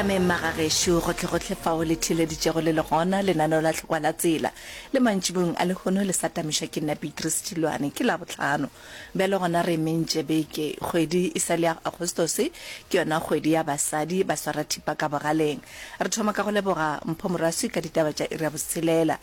tameng magagešo gotlhegotlhe fao le theeleditšego le le gona lenaneo la tlhokwa la tsela le mantšibong a lehono le sa tamišwa ke nna beatrice tilwane ke la botlhano bjale gona re mentše beke kgwedi e sa le ya agostose ke yona kgwedi ya basadi ba swara thipa ka bogaleng re thoma ka go leboga mpho moraswi ka ditaba tša ira boselela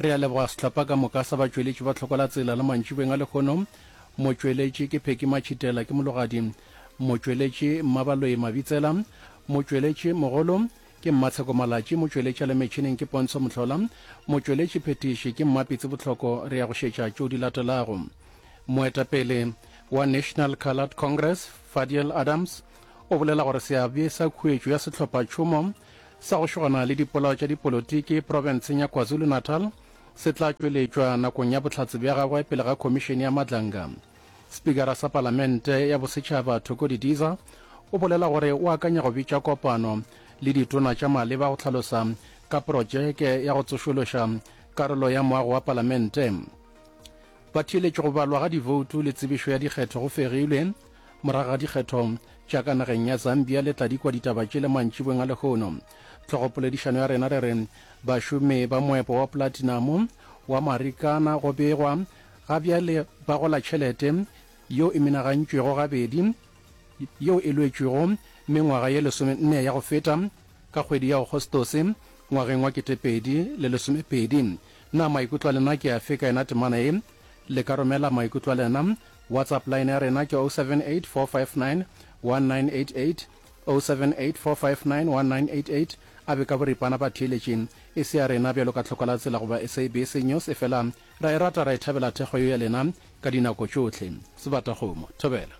Re a leboga sehlopha ka moka sa batšweletši ba Tlhokwelatsela le mantšibeng a lehono. Motšweletši ke Pheki Matšhitela, ke mologadi. Motšweletši Mmabaloyi Mabitsela. Motšweletši mogolo ke Mmatsheko Malatši. Motšweletši a le metšhineng ke Pontsho Mohlola. Motšweletši phetiši ke Mmapitsi Bohloko. Re ya go šetša tšeo di latelago. Moetapele wa National Coloured Congress, Fadiel Adams, o bolela gore seabe sa khuetšo ya sehlopha tšhomo sa go šogana le dipolao tša dipolotiki profenseng ya KwaZulu-Natal se tla tšweletšwa nakong ya bohlatse bja gagwe pele ga Khomišene ya Madlanga. Spikara sa Palamente ya Bosetšhaba Thoko Didiza o bolela gore o akanya go bitša kopano le ditona tša maleba go hlalosa ka projeke ya go tsošološa karolo ya moago wa Palamente. Ba theeletše go balwa ga divoutu le tsebišo ya dikgetho go fegilwe. Morago ga dikgetho tša ka nageng ya Zambia le tla dikwa ditaba tšele mantšibweng a lehono. Tlogopoledišano ya rena re re bašomi ba moepo wa platinamo wa Marikana go begwa ga bjale ba gola tšhelete yeo e menagantšwego gabedi yeo e lwetšwego mengwaga ye lesomenne ya go feta ka kgwedi ya Agostose ngwageng wa ketepedi le lesomepedi. Na maikutlo a lena ke afe ka yena temana ye? Le ka romela maikutlo a lena WhatsApp line ya rena ke 078 459 1988, 078 459 1988, a be ka boripana ba theeletše. E se ya rena bjalo ka Tlhoko la Tsela goba SABC News, efela ra e rata ra e thabela thekgo yeo ya lena ka dinako tšohle. Sebatakgomo. Thobela.